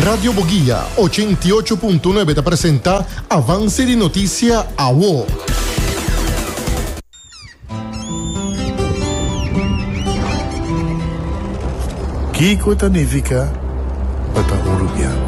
Radio Boguia, ochenta i ocho punto nuebe ta presenta avanse di notisia awo. Kiko ta nifiká pa ta urubiano?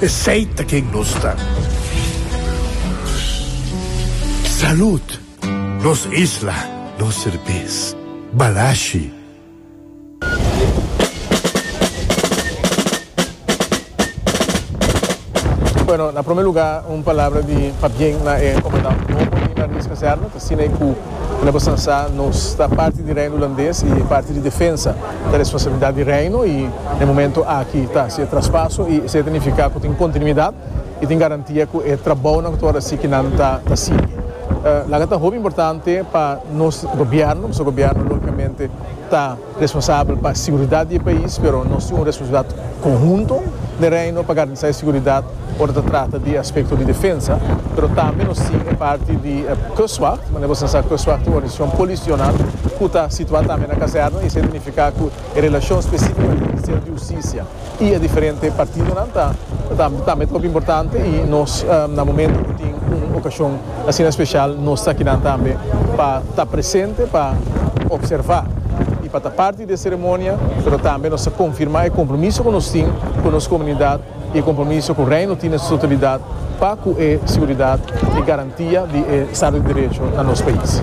Esey ta ken nos ta. Salud! Nos isla, nos serbes. Balashi. Bueno, na prome luga un palabra di pabien na e comandant nobo di Marines Kazerne ta Siney Koe. Mira bo san sa, nos ta parti di Reino Hulandes y e parti di defensa ta responsabilidad di Reino y na e momento aki ta haci e traspaso y esey ta nifica cu tin continuidad y tin garantia cu e trabounan cu ta por haci ki nan ta ta sigui. Laga ta hopi importante pa nos Gobierno, pasobra Gobierno logicamente ta. Responsabel pa siguridat di e pais, pero nos tin un responsabilidat konhunto den Reino pa garantisá e siguridat ora ta trata di aspekto di defensa, pero tambe nos tin e parti di Kustwacht, manera boso ta sa Kustwacht tin un organisashon polisional ku ta situá tambe na kazèrna i esei ta nifiká ku e relashon spesífikamente Ministerio di Hustisia. y e diferente partidonan ta tambe trop importante y nos na momento cu tin un ocasion asina special nos ta akinan tambe pa ta presente pa observa y pa ta parti de e ceremonia pero tambe nos ta confirma e compromiso cu nos tin cu nos comunidad y e compromiso cu Reino tin na su totalidad pa cu e seguridad y e garantia di e Estado di Derecho na nos pais.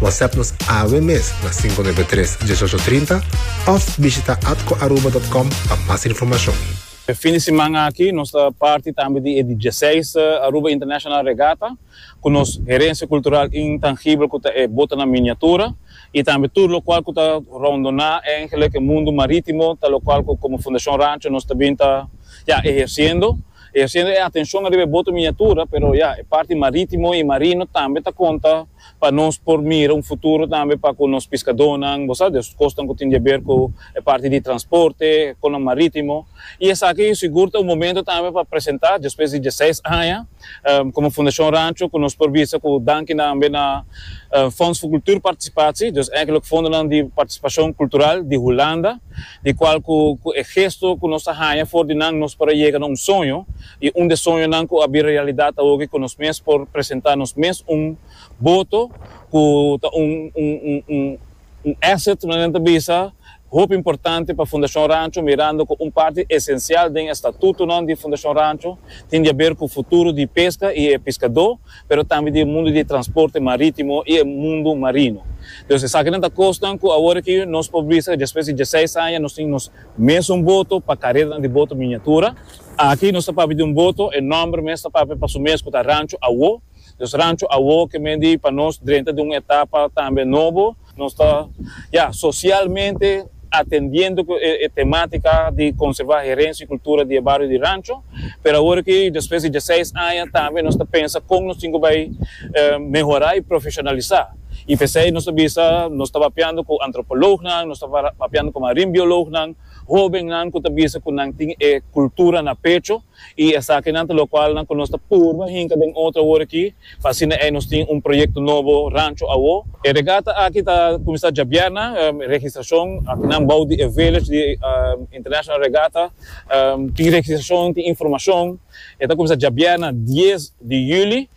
WhatsApp nos awe mes na 593 1830 of bishita atcoaruba.com pa mas informacion. E fin di siman aki nos ta parti tambe di e dieseis Aruba International Regatta cu nos herencia cultural intangibel cu ta e bota na miniatura y tambe tur locual cu ta rondona engelek e mundo maritimo ta locual cu como Fundacion Rancho nos ta bin ta ya eherciendo eherciendo e atencion ariba e boto miniatura pero ya e parti maritimo y marino tambe ta conta pa nos por mira un futuro tambe pa cu nos piscadónan, bo sa, di e cosnan cu tin di a ber cu e parti di transporte, e conan marítimo, y esaki yo sigur ta un momento tambe pa presenta, despues di diesseis aña, como Fundacion Rancho, cu nos por bisa cu danki tambe na Fonds voor Cultuurparticipatie, dus eigenlijk fondonan di participacion cultural di Hulanda, di cual cu e gesto cu nos ta haña for di nan nos por a yega na un soño, I un de soñonan ku a bin realidat awoki ku nos mes por presentá nos mes un boto ku ta un un asset manera nan ta bisa hopi importante pa Fundashon Rancho mirando ku un parti esensial den e statutonan di Fundashon Rancho tin di haber ku futuro di peska i e piskadó pero tambe di e mundu di transporte marítimo i e mundu marino. Entonces esakinan ta kosnan ku awor aki nos por bisa despues di diesseis aña nos tin nos mes un boto pa kareranan di boto miniatura. Aki nos ta papia di un boto, e nòmber mes ta papia pa su mes ku ta Rancho Awó. Nos Rancho Awó ke men di pa nos drenta di un etapa tambe nobo. Nos ta, ya, sosialmente atendiendo ku e temátika di konservá herensia i kultura di e bario di Rancho. Pero awor aki despues di diaseis aña tambe nos ta pensa kon nos tin ku bai mehorá i profeshonalisá. I p'esei nos ta bisa nos ta papiando ku antropològnan, nos ta papiando ku marinbiològnan. Hóbennan ku ta bisa ku nan tin e kultura na pecho i esakinan ta lokual nan ku nos ta purba hinka den otro awor aki pa asina ei nos tin un proyekto nobo rancho awó. E regata aki ta kuminsá djabièrna. Registrashon aki nan bou di e village di International Regatta tin registrashon, tin informashon. E ta kuminsá djabièrna dies di yüli.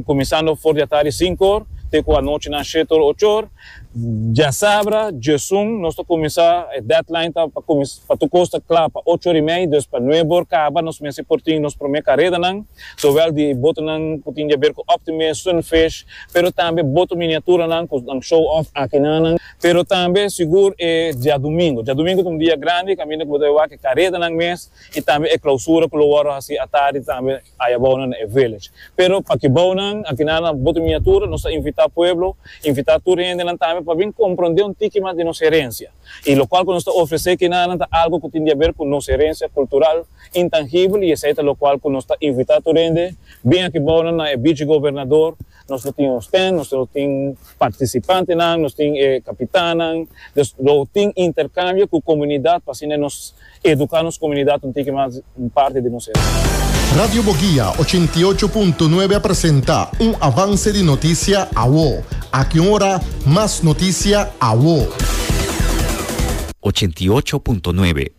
Kuminsando for di atari sinkor te ku anochi nan shetor ochor. Diasabra, Diesun, nos ta kuminsá, e deadline ta pa kuminsá, pa tur kos ta kla pa ocho or i mei, dus pa nuebe or kaba nos mester por tin nos promé karedanan, zowel di botonan ku tin di aber ku Optimist, Sunfish, pero tambe boto miniaturanan ku nan show off aki na nan, pero tambe sigur e diadumingu. Diadumingu ta un dia grandi kaminda ku bo ta wak e karedanan mes i tambe e klausura ku lo wòrdu hasi atari tambe. Ai a bounan e village. Pero pa ki bounan, anti nan a bota miniatura, nos ta invitá pueblo, invitá tur e hendenan tambe pa bin komprondé un tiki mas di nos herensia. I lokual ku nos ta ofresé kinanan ta algu ku tin di aber ku nos herensia kultural intangibel i esei ta lokual ku nos ta invitá tur hende, Bin aki bounan na e Bichi Gobernador Nos lo tin nos ten, nos lo tin participantenan, nos tin e capitannan, dus lo tin intercambio cu comunidad pa asina nos educa nos comunidad un tiki mas un parti di nos herencia. Radio Boguia ochenta i ocho punto nuebe a presenta un avance di noticia awo. Aki un ora mas noticia awo. Ochenta i ocho punto nuebe.